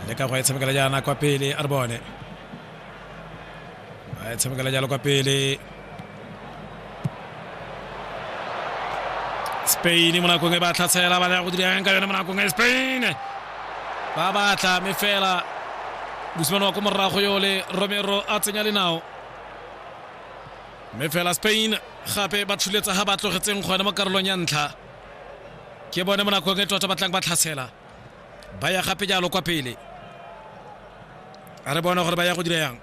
le ka go e tshamekela jaana kwa pele a re bone ba e tshamekela jalo kwa pele spain mo nakong e ba tlhatshela ba ya go dirang ka yone mo nakong e spain ba batla mme fela mosimane wa ko morago yo le romero a tsenya lenao mme fela spain gape ba tshuletsa ga ba tlogetseng gone mo karolong ya ntlha ke bone mo nakong e tota batlang ba tlhatshela ba ya gape jalo kwa pele a re bona gore ba ya go dira yang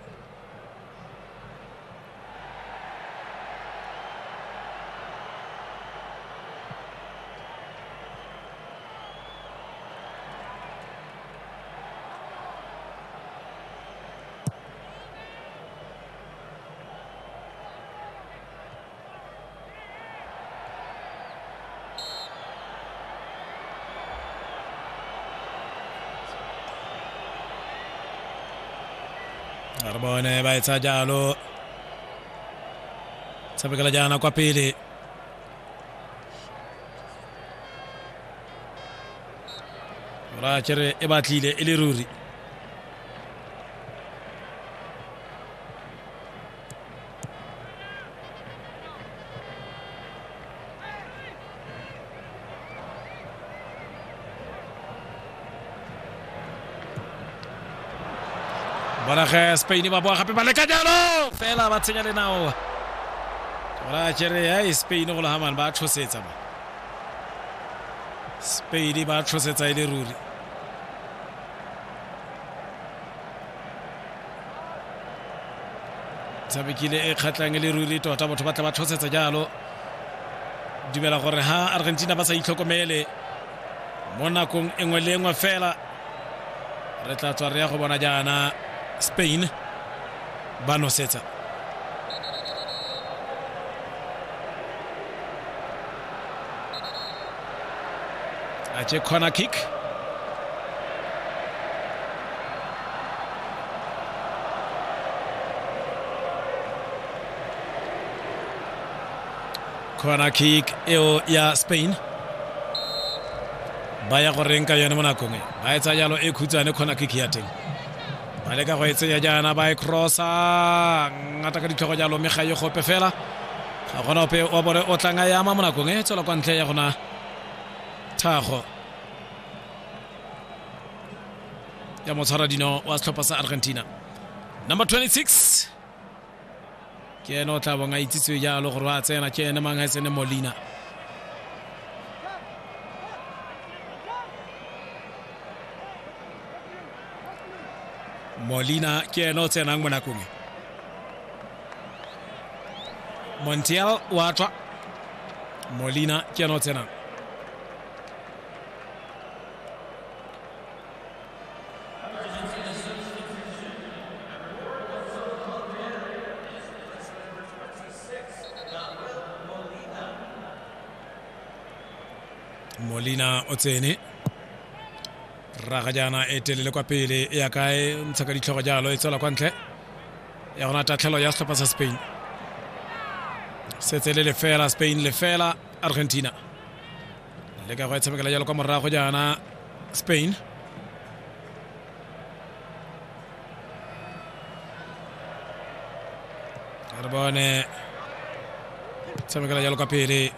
re bone ba e tsaya jalo tshamekela jaana kwa pele ra kere e batlile e le ruri bona ge spain ba boa gape ba leka jalo fela ba tshenya le nao ra kere ya e spain go legamane ba tlhosetsa ba spain ba tlhosetsa e le ruri tshamekile e kgatlhang e le ruri tota batho ba tla ba tlhosetsa jalo dumela gore ha argentina ba sa itlhokomele mo nakong e nngwe le e nngwe fela re tla tswa re ya go bona jaana spain ba nosetsa a tše corner kick corner kick eo ya spain ba ya go reng ka yone mo nakong e ba e tsa jalo e khutshwane corner kick ya teng ba leka go e tsenya jaana ba e crossa ngata ka ditlhogo jalo mme ga e gope fela ga gona ope wa bone o tlang a e ama mo nakong e tswela kwa ntle ya gona thago ya motshwara dino wa setlhopha sa argentina number 26 ke ene o tla bong a itsitswe jalo gore wa tsena ke ene mang a tsene molina molina ke ene o tsenang mo nakong e montiel wa tswa molina ke ena o tsenang molina o tsene raga jaana e telele kwa pele e ya kae ntsha ka ditlhogo jalo e tswela kwa ntle ya gona tatlhelo ya setlhopha sa spain setse le lefela spain lefela argentina le ka go e tshamekela jalo kwa morago jaana spain re bone tshamekela jalo kwa pele